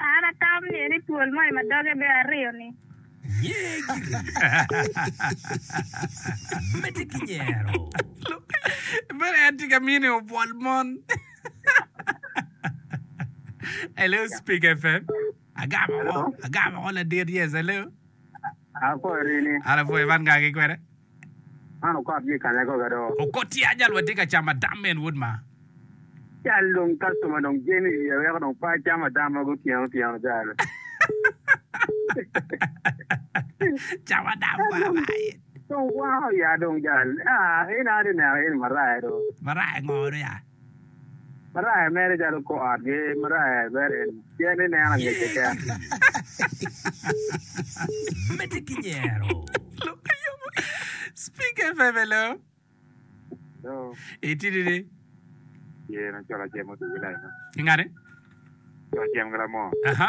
An atamo niye ni twol moni ma doge bene aryo-ni. Bene en tye ka miyo ni obwol mon. Hello, Speak FM. Agamo ko, agamo ko ladit. Yes, hello. Apo rini. An apo Evan kaki kwede. Man okot gi kanya koga do. Okot tye aja lwa tye ka camo adam men wod ma. Cal dong customer dong jami i wiya weko dong pe acam adam ma gutyeno tyeno cal. Camo adam kwa bayi. Dong kwako ya dong cal. Ah in a ati neno in maraya do. Maraya ngo do ya. Maraya mere calo kor ot gi maraya i Bethel, pien ineno angecce keken. Medde ki nyero. Lok ayomo. Speaker FM hello. Hello. Itidi ni. Ye na cola cem otugi lai ma. Ingane. Cola cem gila mo. Aha.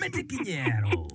Medde ki nyero,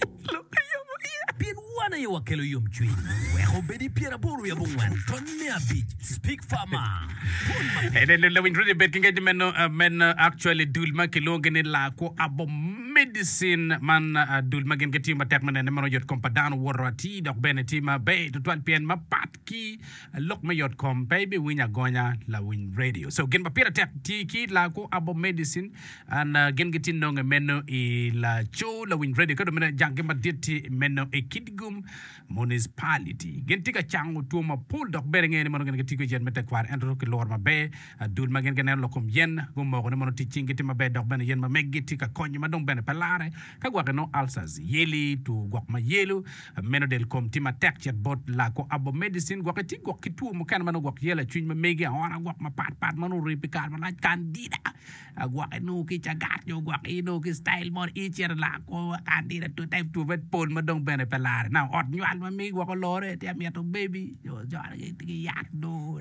pien wan aye wakelo yomcwiny. Wek obed i pyeraboro i abongwen taun me abic. Speak Farmer, Pwony Maber. Lawiny Rudy bed ki ngec ni meno meno actually dul ma kilwongo gi ni lakwo abo medicine man dul ma gin gitiyo matek me nene meno yot kom pa dano woto atir dok bene tye maber tutwal pien mapat ki Lok me yot kom pe ibiwinyo agonya lawiny radio so gin ma pire tek ti ki laku abo medicin and gin giti nonge meno i laco lawiny radio ka dong bene janggi madit ti meno i Kitgum municipality gin ti ka cango two mapol dok ber inge ni mono gin giti kwede yen me tekwaro ento ki luro maber dul ma gin gineno lok kom yen gumoko ni mono tic cing giti maber dok bene yen ma megi ti ka konyo ma dong bene pe lare ka gwaki nongo ulcers yeli two gwok ma yelo Meno del kom tye matek cet bot lako abo medicine gwok iti gwok ki two mukene ma nongo gwok ye lacwiny ma mege aona gwok mapat pat ma nongo ori pi kare malac candida gwok inongo ki cagat nyo gwok inongo ki style mo i cito lako candida two type two med pol ma dong bene pe lare na ot nywal ma mege gwok olore tye mito baby nyo coro ki yat nongo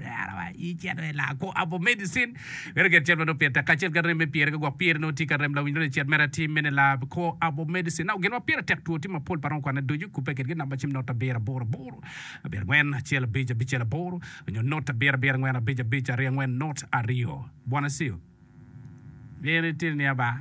i cito i lako abo medicine Meno gen cen ma nongo pire tek kacel ki rem me pire ka gwok pire nongo tye ka rem lawinyone ni cet mere atim mene la kor abo medicine nao gen ma pire tek two tye mapol pa romo kwane ducu okubbe kedgi namba cim not abiro aboro aboro abiro angwen acel abic abicel aboro nyo not abiro abiro angwen abic abic aryo angwen not aryo bwana ceo. Meno itini ni aba.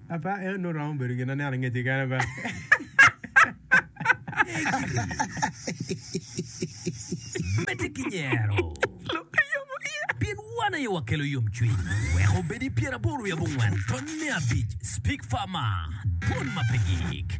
Apa eno nongo romo bedo gin aneno angec keken apa? Medde ki nyero. Lok ki yom wiye. Pien wan aye wakelo yomcwiny. Wek obed i pyeraboro wiye abongwen, tony me abic, Speak Farmer, Dwon ma pe gik.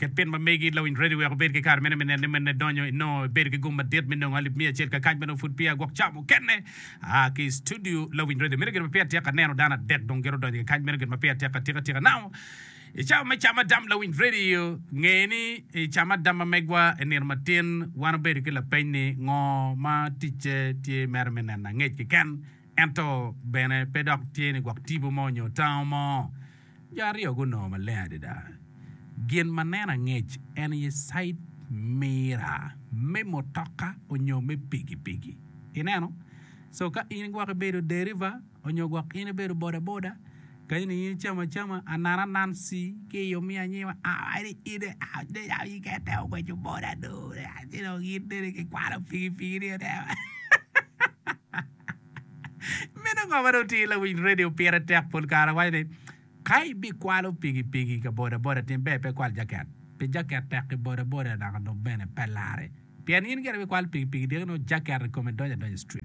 Ken ma megi lawiny Reddy oweko bedo ki kare mene me neno ni mene donyo i nongo ibedo ki gum madit me nongo alip miya acel kakac ma nongo pud peya gwok ca mukene aa ki i studio lawiny Reddy meno gin ma peya atika neno dano adek dong giro donyo kakac meno gin ma peya atika tika tika nao i cawa me cam adam lawiny Reddy o nge ni i cam adam ma megwa i nino matin wan obedo ki lapeny ni ngo ma ticce tye mere me neno angec keken ento bene pe dok tye ni gwok tipo mo nyo tango mo. Jo aryo gunongo maleng adada gin ma nen angec en aye cait mira me mutoka onyo me pikipiki. Ineno? So ka in gwok ibedo deriva onyo gwok in ibedo bodaboda, kadi ni in icamo acama, anan anan ci ki i omiyo anyima kite ogweco boda do ci dong in tye ni kikwalo pikipiki ni. Meno ngo ma dong tye? Lawiny redio pire tek pol kare waco ni ka ibikwalo pikipiki ka bodaboda tin ber pe ikwal jaket pi jaket tek i bodaboda naka dong bene pe larre pien in gire ibikwalo pikipiki dyegi nongo jaket i kome donyo adonya i street.